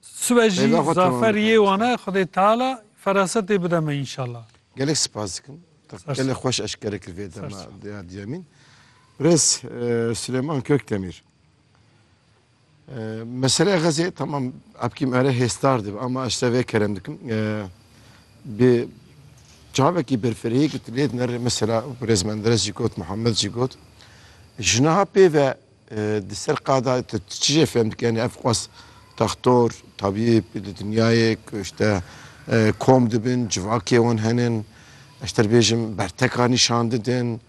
Sibe jî Rêza xwe temam zafer bike yê lütfen. wan e Xwedê Teala ferasetê bide me înşallah. Gelek spas dikim. Te Ser gelek sor. xweş eşkere kir vê dema sor. dê ya diyemîn. Birêz eh, Silêman Kökdemîr. Eh, Meseleya Xezê tamam epkî me re hêstar dibe ama ez te vê kerem dikim. Eh, Bi çavekî berfirehî ku tu lê dinere mesela Birêz Menderes jî got, Muhammed jî got. Ji niha pê ve Di ser qada tu çi jê fêm dike? Yanî ev xwest textor, tabîb, di dinyayê ku işte kom dibin, civakê wan henin, ez ji te re bêjim berteka nîşan didin.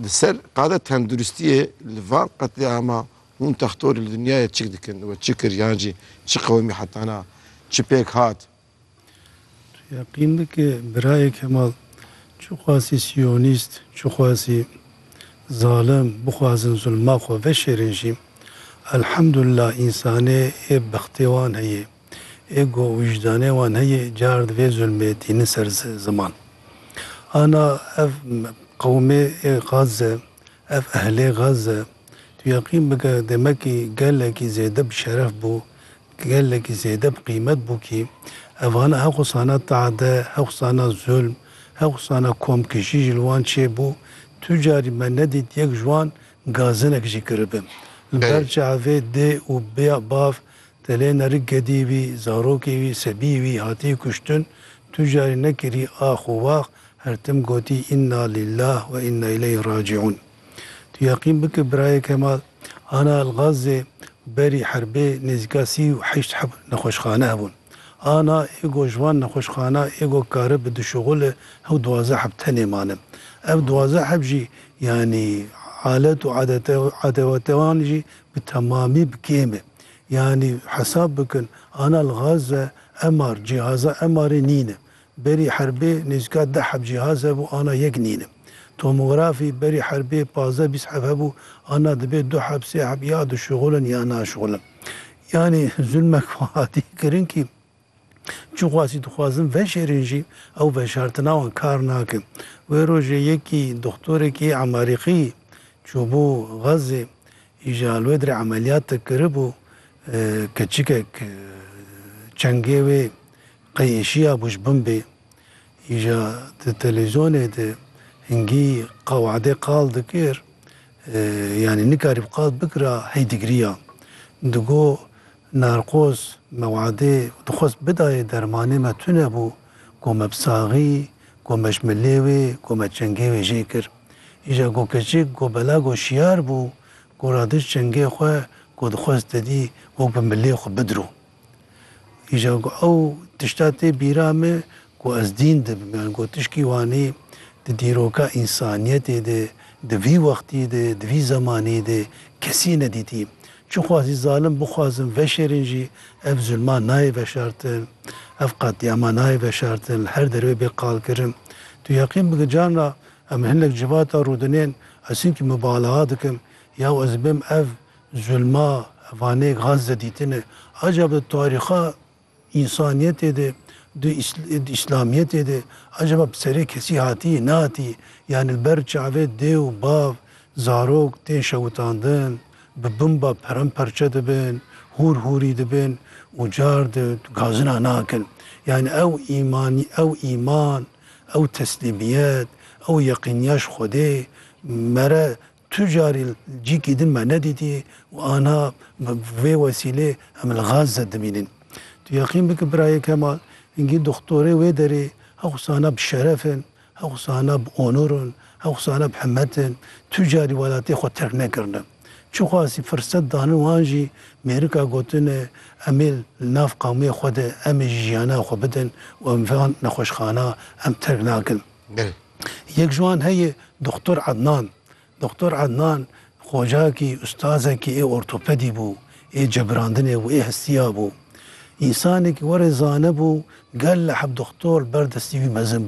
Di ser qada tenduristiyê li van qetlîama hûn textorî li dinyayê çik dikin we çi kir yan jî çi qewimî hetana, çi pêk hat? Tu yeqîn bike birayê Kemal çi xwesî siyonîst, çi xwesî zalim bixwazin zulma xwe veşêrin jî elhemdulila însanê ê bextê wan heye, ê go û wijdanê wan heye car di vê zulmê tînin ser ziman. Ana ev qewmê ê Gaze, ev ehlê Gaze. Tu yeqîn bike demekî gelekî zêde bi şeref bû, gelekî zêde bi qîmet bû kî evan hewq sana tade, hewq sana zulm, hewq sana komkijî ji li wan çê bû. Tu carî me nedît yek ji wan gazinek jî kiribim. Li ber çavê dê û bav, telêne rik gedî wî, zarokê wî, sebiyê wî hatî kuştin. Tu carî nekirî ax û wax, her tim gotî Inna lillah we inna ileyh racîun. Tu yeqîn bike birayeke ma ana Elgazê berî herbê nêzîka sî û heşt heb nexweşxane hebûn. Ana ê go ji van nexweşxana ê go kare bi duşuxul e hew duwazdeh heb tenê mane. Ev duwazdeh heb jî yanî alet û adewatê wan jî bi temamî bi kêm e. Yanî hesab bikin ana Elgaze MR, cîhaza MR'ê nîne. Berî Herbê nêzîka deh heb cîhaz hebû ana yek nîne. Tomografî, Berî Herbê pazdeh bîst heb hebû ana dibê du heb sê heb ya dişuxul in ya naşuxul in. Yanî zulmek wan hatî kirin kî çi xwasî dixwazin veşêrin jî ew veşartina wan kar nake. Wê rojê yekî doxtorekî Emarîqî çûbû Xazzê îja Alwedrê emeliyat te kiribû. Keçikek çengê wê Qeyîşiya Buşbumbê îja di televîzyonê de hingî qewedê qal dikir, yanî nikarîb qal bikira hey digiriya. Digo, Narkoz me wedê û dixwest bidayê dermanê me tune bû ku me bi saxî ku me ji milê wê ku me çengê wê jê kir. Îja ku keçik ku bela ku şiyar bû ku radiş çengê xwe ku dixwest didî wek bi milê xwe bidiro. Îja ku ew tişta tê bîra me ku ez dîn dibim yan ku tişkî wanî di dîroka însaniyetê de di vî wextî de di vî zemanî de kesî nedîtî. Çixwa zî zalim bixwazin veşêrin jî ev zulma nayê veşartin, ev qetlîama nayê veşartin li her derve bê qalkirin. Tu yeqîn bike carna em li hinek civata rûdinên ez hinkî mubalaxa dikim ya ez dibim ev Zulma Vanê Gaze dîtine. Acaba tarîxa însaniyetê de, di îslamiyetê de acaba bi serê kesî hatî, nehatî? Yanî li ber çavê dêw, bav, zarok tên şewitandin, bi bimba peremperçe dibin, hûr hûrî dibin û car di gazina nakin. Yanî ew îmanî, ew îman, ew teslîmiyet, ew yeqîniya ji Xwedê mere Tu carî cîkî din me nedîtî û ana bi vê wesîlê em li Gazze dimînin. Tu yeqîn bike birayê Kemal, hingî doxtorê wê derê hewsana bi şeref in, hewsana bi onur in, hewsana bi himet in. Tu carî welatê xwe terk nekirine. Çiqasî firset danin wan jî mêrika gotine em ê li nav qewmê xwe de em ê jî jiyana xwe bidin û em van nexweşxana em terk nakin. Belê. Yek ji wan heye Doxtor Ednan. Doxtor Ednan xocakî, ustazekî ê ortopedî bû, ê cebirandinê bû, ê hestiya bû. Însanekî were zanebû, gelek heb doxtor li ber destê wî mezin bû.